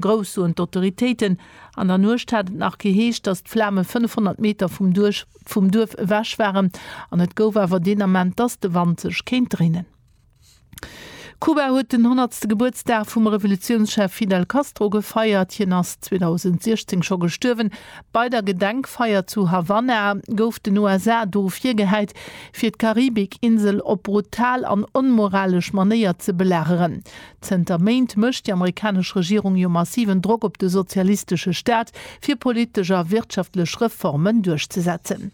Grouss, soen d'Autoritéiten. An der Nuecht hat et nach geheescht, datt d'Flame 500 Meter vum Duerf vum Duerf ewech waren. An et gouf awer deen Ament, datt de Wand sech kéint dréinen. Kuba huet den honnertste Gebuertsdag vum Revolutiounschef Fidel Castro gefeiert. Hien ass 2016 scho gestuerwen. Bei der Gedenkfeier zu Havanna gouf den USA do virgehäit, fir d'Karibik-Insel op brutal an onmoralesch Manéier ze belageren. Zënter Méint mécht déi amerikanesch Regierung jo massiven Drock op de sozialistesche Staat, fir politesch a wirtschaftlech Reformen duerchzesetzen.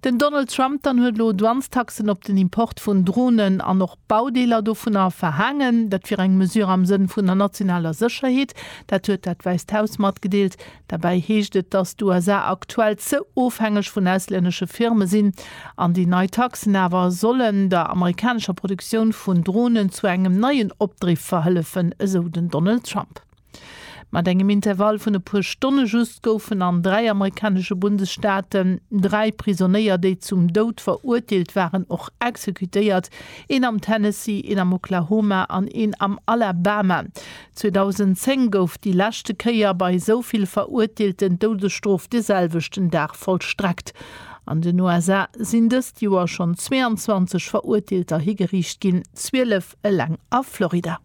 Den Donald Trump dann huet elo Douanestaxen op den Import vun Dronen an och Baudeeler dovunner verhaangen. Dat wier eng Mesure am Sënn vun der nationaler Sécherheet. Dat huet dat Wäisst Haus matgedeelt. Derbäi heescht et, dass d'USA aktuell ze ofhängeg vun auslännesche Firme sinn an déi nei Taxen awer sollen der amerikanescher Produktioun vun Dronen zu engem neien Opdriff verhëllefen, esou den Donald Trump. Mat engem Intervall vun e puer Stonne just goufen an dräi amerikanesche Bundesstaaten dräi Prisonéier, déi zum Doud verurteelt waren, och exekutéiert, een am Tennessee, een am Oklahoma an een am Alabama. 2010 gouf déi leschte Kéier bei esou vill Verurteelten d'Doudesstrof de selwechten Dag vollstreckt. An den USA sinn dëst Joer schonn 22 Verurteelter higeriicht ginn, 12 eleng a Florida.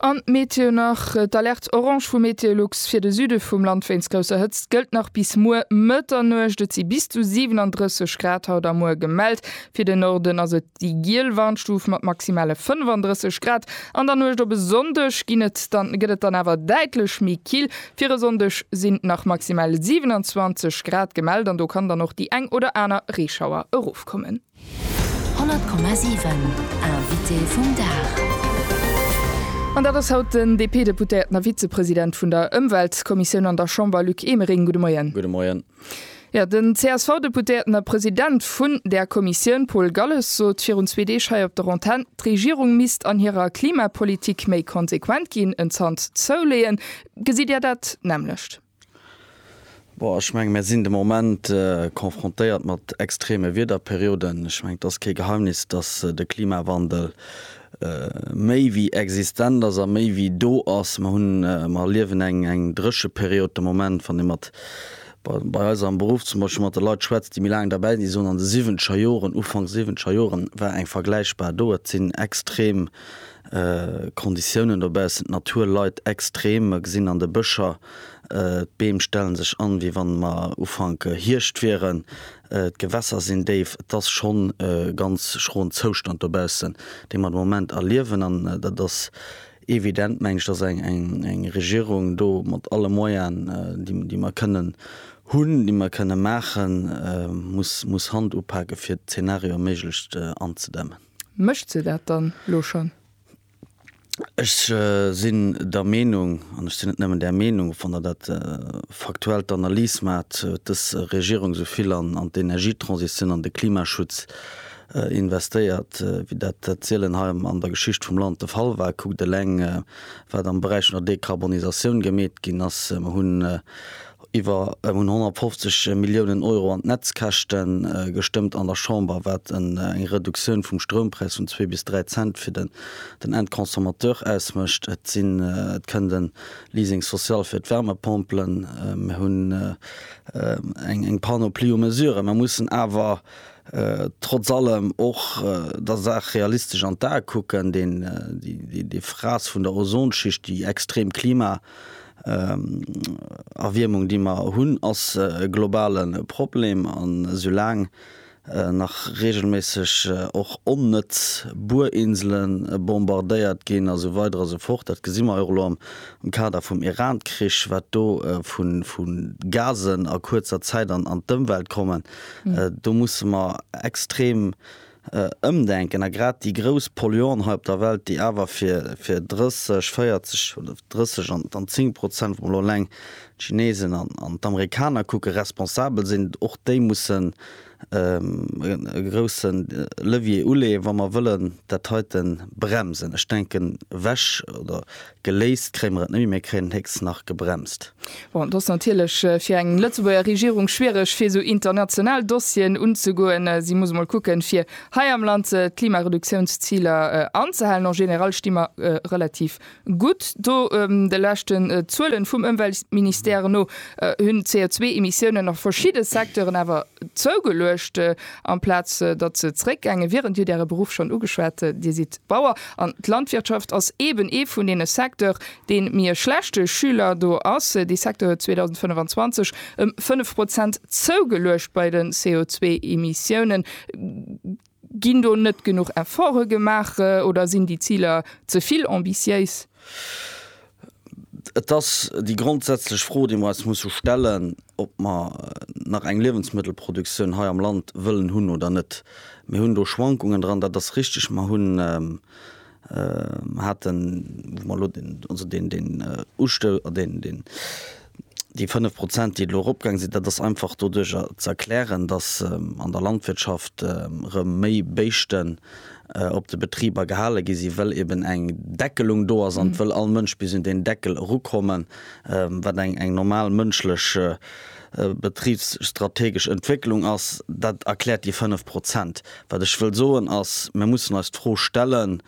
An Meteo nach, D'Alerte orange vu Meteolux fir de Süde vum Land wéinst grousser Hëtzt gëllt nach bis muer Mëtternuecht. Et si bis zu 37 Grad haut a muer gemellt. Fir de Norden ass et. Déi giel Warnstuf mat maximale 35 Grad. An der Nuecht op e Sonndeg ginn et dann, gëtt et dann awer däitlech méi kill. Fir e Sonndeg sinn nach maximal 27 Grad gemellt an do kann dann och déi eng oder aner Reeschauer erofkommen. 100,7 Invité vum Dag. An dat ass haut den DP-Deputéierten a Vizepresident vun der Ëmweltkommissioun an der Chamber, Luc Emering. Gudde Moien. Gudde Moien. Jo, den CSV-Deputéierten a President vun där Kommissioun Paul Galles sot virun zwee Deeg hei op der Antenn, d'Regierung misst an hirer Klimapolitik méi konsequent ginn, en Zant zouleeën. Gesitt Dir dat d'nämlecht? Boah, ech menge mir sinn de Moment confrontéiert mat extreme Wiederperioden. Ech menge et ass kee Geheimnis, datt de Klimawandel méi wéi existent ass a méi wéi do ass. Mer hunn, mer erliewen eng, eng Drécheperiod de Moment. Wann ee mat, bei eis am Beruff zum Beispill, mat de Leit schwätzt, déi méi laang derbäi sinn, déi soen, an de siwwenzeger Joren, Ufank siwwenzeger Joren war eng vergläichbar do. Et sinn extrem Konditiounen dobaussen, d'Natur leit extrem. Mer gesinn an de Bëscher, d'Beem stelle sech an, wéi wann mer Ufank Hierscht wieren. D'Gewässer sinn déif. Et ass schonn e ganz schroen Zoustand dobaussen, dee mer de Moment erliewen. An dat ass evident, meng ech, datt eng Regierung do mat alle Moyaen, déi mer kënnen hunn, déi mer kënnen maachen, muss Hand upake fir d'Zeenarioe méiglechst anzedämmen. Mécht se dat dann elo schonn? Ech sinn der Meenung, an ech sinn net nëmmen där Meenung, wann Der dat faktuell d'Analys maacht, huet dës Regierung esou vill an d'Energietransitioun, an de Klimaschutz investéiert, wéi dat sielen hei an der Geschicht vum Land de Fall war. Kuckt eleng, wat am Beräich vun der Dekarbonisatioun gemeet ginn ass. Mer hunn Iwwer hunn 150 Milliounen Euro an d'Netzkäschte gestëmmt an der Chamber, wat eng Reduktioun vum Stroumpräis vun zwee bis dräi Cent fir den Endconsommateur ausmécht. Et kënnt e Leasing social fir d'Wärmepompelen. Mir hunn eng Panoplie u Mesuren. Mer mussen awer trotz allem och der Saach realistesch an d'Ae kucken. Déi Frass vun der Ozonschicht, déi extrem Klima, Erwiermung déi mer hunn ass e globale Problem an esou laang nach reegelméisseg och onnëtz Buerinsele bombardéiert ginn a sou weider a sou fort, dat gesi mer jo och elo am Kader vum Iran-Krich, wat do vu Gasen a kuerzer Zäit an d'Ëmwelt kommen, do musse mer extrem Ëmdenken a grad déi grouss Polluanten hei op der Welt, déi awer fir, fir 30, 40 oder 30 an, an 10 Prozent, wa mer elo eleng d'Chinesen an, an d'Amerikaner kucken, responsabel sinn, och déi mussen e groussen Levier uleeën, wa mer wëllen dat heite bremsen. Ech denken, Wäsch oder Geléist kréie mer et net méi, mir kréien et héchstens nach gebremst. Bon, et ass natierlech fir eng Lëtzebuerger Regierung schwiereg, fir esou international Dossieren unzegoen. Si muss emol kucken, fir hei am Land d'Klimareduktiounsziler anzehalen. En général sti mer relativ gutt do. De leschten Zuelen vum Ëmweltministère no hunn d'CO2-Emissiounen a verschidde Secteuren awer zougeluecht, amplaz datt se zréckgaange wieren. Dir hutt Äre Beruff schonn ugeschwat, Dir sidd Bauer. An d'Landwirtschaft ass eben ee vun deene Secteur, deen méi e schlechte Schüler do ass. Dee Secteur huet 2025 ëm 5 Prozent zougeluecht bei de CO2-Emissiounen. Ginn do net genuch Efforte gemaach oder sinn déi Ziler ze vill ambitiéis? Et ass déi grondsätzlech Fro, déi mer eis musse stellen, ob mer nach eng Liewensmëttelproduktioun hei am Land wëllen hunn oder net. Mir hunn do Schwankungen dran, dat ass richtig. Mer hunn, haten, wou mer elo den, also den, den Usto, den, den, Déi 5 Prozent, déi elo eropgaange sinn, dat ass einfach doduerjer ze erklären, datt an der Landwirtschaft erëm méi Béischten op de Betriber gehale gi sinn, well eben eng Deckelung do ass an et wëll all Mënsch bis un deen Deckel erukommen, wat eng normal mënschlech betribsstrategesch Entwécklung ass. Dat erkläert déi 5 Prozent. Wat ech wëll soen ass, Mir mussen eis d'Fro stellen,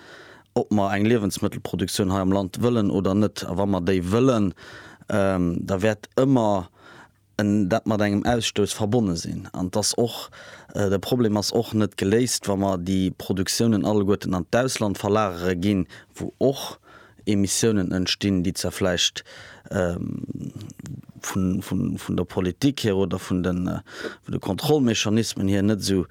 ob mer eng Liewensmëttelproduktioun hei am Land wëllen oder net. A wa mer déi wëllen, da wäert ëmmer dat mat engem Ausstouss verbonne sinn. An et ass och, de Problem ass och net geléist, wa mer déi Produktiounen alleguerten an d'Ausland verlagere ginn, wou och Emissiounen entstinn, déi zwar vläicht vun der Politik hier oder vun de Kontrollmechanismen hier net esou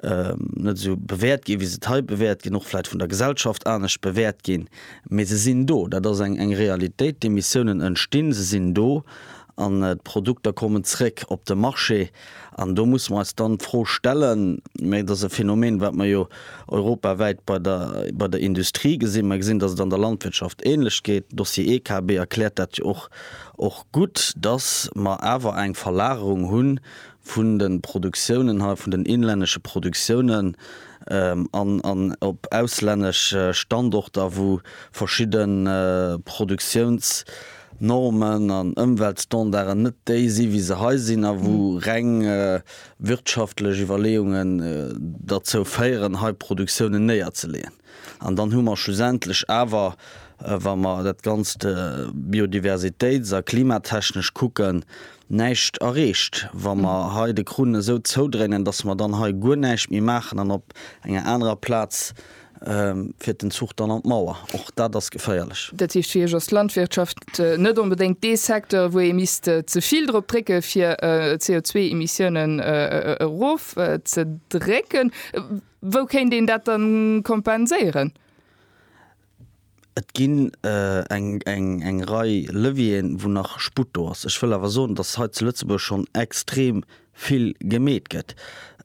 net esou bewäert ginn, wéi se et hei bewäert ginn, och vläit vun der Gesellschaft anescht bewäert ginn, mee se sinn do, dat ass eng Realitéit. D'Emissiounen entstinn, se sinn do an d'Produkter kommen zréck op de Marché. An do musse mer eis dann d'Fro stellen, mä et ass e Phänomen, wat mer jo europawäit bei der bei der Industrie gesinn, mer gesinn, datt et an der Landwirtschaft ähnlech geet, de Dossier EKB erkläert dat jo och och gutt, datt mer awer eng Verlagerung hunn vun de Produktiounen hei, vun den inlännesche Produktiounen an op auslännesch Standorter, wou verschidde Produktiounsnormen an Ëmweltstandarden net déi sinn, wéi se hei sinn, a wou reng wirtschaftlech Iwwerleeungen derzou féieren, hei Produktiounen néierzeleeën. An dann hu mer schlussendlech awer, wa mer dat Ganzt biodiversitéits a klimatechnesch kucken, näischt erreecht, wa mer hei de Krunn esou zoudréinen, datt mer dann hei guer näischt méi maachen an op enger anerer Plaz fiert den Zuch dann an d'Mauer. Och dat ass geféierlech. Dat heescht, fir Iech ass d'Landwirtschaft net onbedéngt dee Secteur, wou ee misst ze vill drop drécke fir d'CO2-Emissiounen erof ze drécken. Wou kéint een dat da kompenséieren? Et ginn eng Rei Levieren, wou nach Sputt do ass. Ech wëll awer soen, dass hei zu Lëtzebuerg schonn extrem vill gemeet gëtt.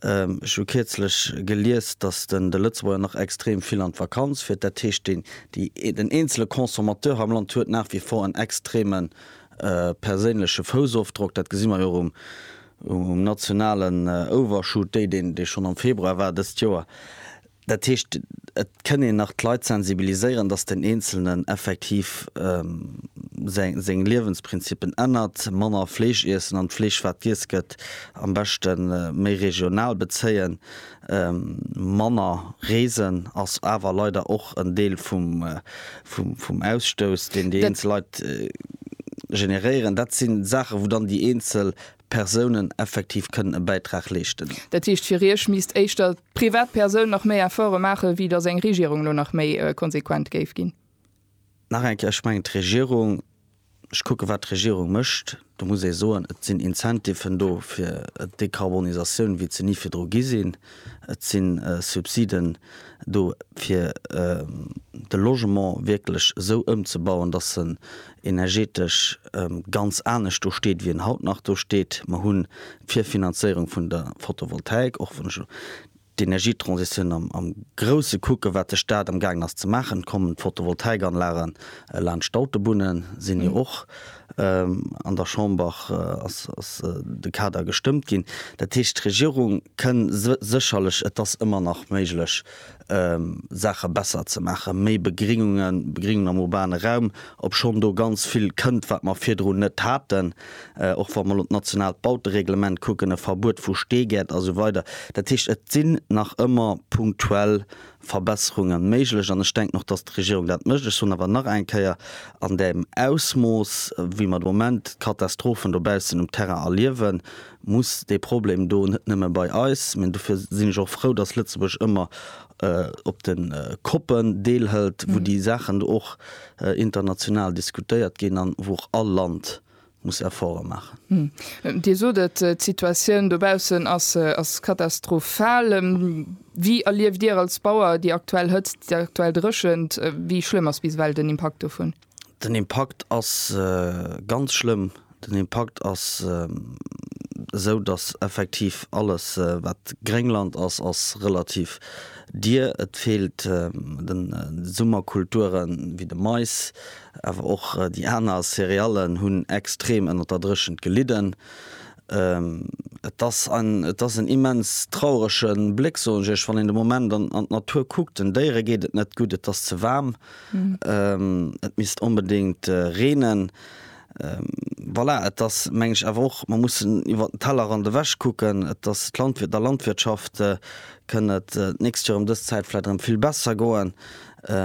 Ech hu kierzlech gelies, dass de Lëtzebuerger nach extrem vill an d'Vakanz fiert. Dat heescht, den eenzele Consommateur hei am Land huet nach wie vor en extreme perséinleche Foussofdrock. Dat gesi mer jo och um nationalen Overshoot, deen schonn am Februar war dëst Joer. Dat heescht, et kënn een nach d'Leit sensibiliséieren, datt den Eenzelnen effektiv seng Liewensprinzippen ännert, manner Fleesch iessen an d'Fleesch, wat giess gëtt, am beschte méi regional bezéien, manner reesen ass awer leider och en Deel vum Ausstouss, deen déi eenzel Leit generéieren. Dat si Saache wou dann déi eenzel Persounen effektiv kënnen e Bäitrag leeschten. Dat heescht, fir Iech misst éischter d'Privatpersoun nach méi Efforte maachen, wéi datt eng Regierung elo nach méi konsequent géif ginn. Nach eng Kéier, ech mengen d'Regierung, ech kucke wat d'Regierung mécht, do muss ee soen, et sinn Incentiven do fir d'Dekarbonisatioun, wéi et se ni virdru gi sinn. Et si Subsiden do fir de Logement wierklech esou ëmzebauen, datt en energetesch ganz anescht do steet, wéi en haut nach do steet. Mer hunn d'Virfinanzéierung vun der Photovoltaik, och wann ech elo d'Energietransitioun am Grousse kucken, wat de Staat am gaangen ass ze maachen, kommen d'Photovoltaikanlage laanscht d'Autobunne, sinn jo och an der Chamber ass de Kader gestëmmt ginn. Dat heescht, d'Regierung kënn sécherlech, et ass ëmmer nach méiglech, Saache besser ze maachen, méi Begrinnungen, Begrinnungen am urbane Raum, obschonn do ganz vill kënnt, wat mer virdrun net haten, och wa mer elo d'nationaalt Bautereglement kucken, e Verbuet vu Steegäert a sou weider. Dat heescht, et sinn nach ëmmer punktuell Verbesserunge méiglech an ech denken och, dass d'Regierung dat mécht. Ech soen awer nach eng Kéier, an deem Ausmooss, wéi mer de Moment d'Katastrophen dobaussen um Terrain erliewen, muss dee Problem do net nëmme bei eis, mä dofir sinn ech och frou, datt Lëtzebuerg ëmmer op de COPen deelhëlt, wou déi Saachen do och international diskutéiert ginn an wou och all Land muss Efforte maachen. Dir sot et, d'Situatioun dobaussen ass katastrophal. Wéi erlieft Dir als Bauer déi aktuell Hëtzt, déi aktuell Dréchent? Wéi schlëmm ass bis ewell den Impakt dovun? Den Impakt ass ganz schlëmm. Den Impakt ass esou, datt effektiv alles, wat Gréngland ass, ass relativ dier. Et feelt de Summerkulturen, wéi de Mais, awer och déi aner Céréallen hunn extrem ënner der Dréchent gelidden. Et ass en, et ass en immens traurege Bléck, soen ech Iech, wann een de Moment an d'Natur kuckt. Den Déiere geet et net gutt, et ass ze waarm. et misst onbedéngt reenen. Voilà, et ass, meng ech, awer och, mer mussen iwwer den Tellerrand ewech kucken. Et ass d'Landwir, der Landwirtschaft kënn et d'nächst Joer ëm dës Zäit vläicht erëm vill besser goen,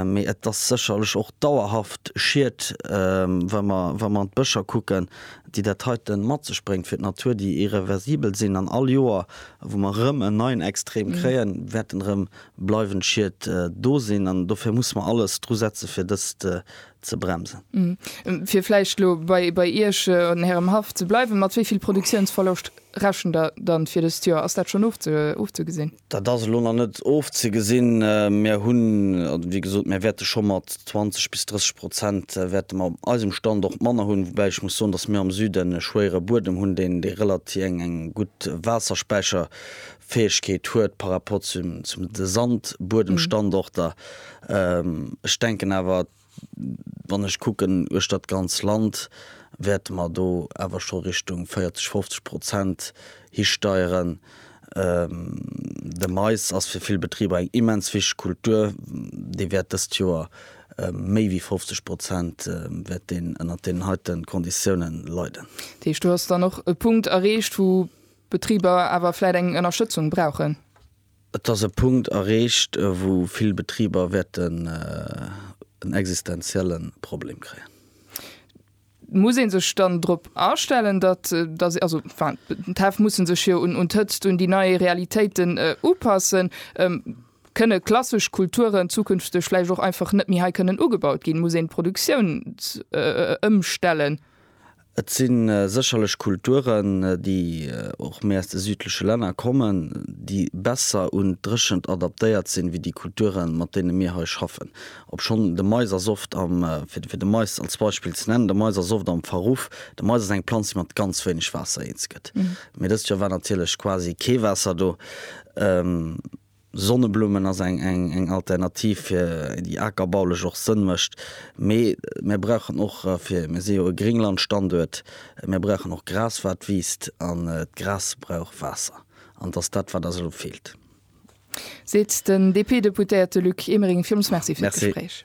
mee et ass sécherlech och dauerhaft Schied, wa mer, wa mer an d'Bëscher kucken, déi dat heite mat sech bréngt fir d'Natur, déi irreversibel sinn. An all Joer, wou mer erëm en neien Extrem kréien, wäerten erëm bleiwend Schied do sinn an dofir musse mer alles dru setze fir dëst ze bremsen. Fir vläicht elo bei Iech an Ärem Haff ze bleiwen, mat wéi vill Produktiounsverloscht rechent Der dann fir dëst Joer? Ass dat schonn ofzegesinn? Dat ass elo nach net ofzegesinn. Mir hunn, wéi gesot, mir wäerte scho mat 20 bis 30 Prozent wäerte mer op eisem Standort manner hunn, woubäi ech muss soen, datt mir am Süden e schwéiere Buedem hunn, deen eng gutt Waasserspäicher Fäegkeet huet par rapport zu de Sandbuedemstandorter. Ech denken awer, wann ech kucken uechtert d'ganz Land, wäerte mer do awer scho Richtung 40, 50 Prozent histeieren. De Mais ass fir vill Betriber eng immens wichteg Kultur, dee wäert dëst Joer méi wéi 50 Prozent wäert deen ënnert deenen heite Konditiounen leiden. Dat heescht, do ass dann och e Punkt erreecht, wou Betriber awer vläit eng Ënnerstëtzung brauchen. Et ass e Punkt erreecht, wou vill Betriber wäerten en existenzielle Problem kréien. Muss ee sech dann drop astellen, datt se, also d'Häff musse sech jo un d'Hëtzt, un déi nei Realitéiten upassen? Kënne klassesch Kulturen zukünfteg vläicht och einfach net méi hei kënnen ugebaut ginn? Muss een d'Produktioun ëmstellen? Et si sécherlech Kulturen, déi och méi aus de südleche Länner kommen, déi besser un d'Dréchent adaptéiert sinn, wéi déi Kulturen, mat deene mir hei schaffen. Obschonn de Mais ass oft am, fir de Mais als Beispill ze nennen, de Mais ass oft am Verruff. De Mais ass eng Planz, déi mat ganz wéineg Waasser eens gëtt. Mee dëst Joer war natierlech quasi kee Waasser do. Sonneblummen ass eng Alternativ fir déi akerbaulech och Sënn mécht, mee mir brauchen och fir, mir si jo e Gringlandstanduert, mir brauchen och Gras wat wiisst an d'Gras brauch Waasser an et ass dat wat eis elo feelt. Seet den DP-Deputéierte Luc Emering. Villmols Merci fir d'Gespréich.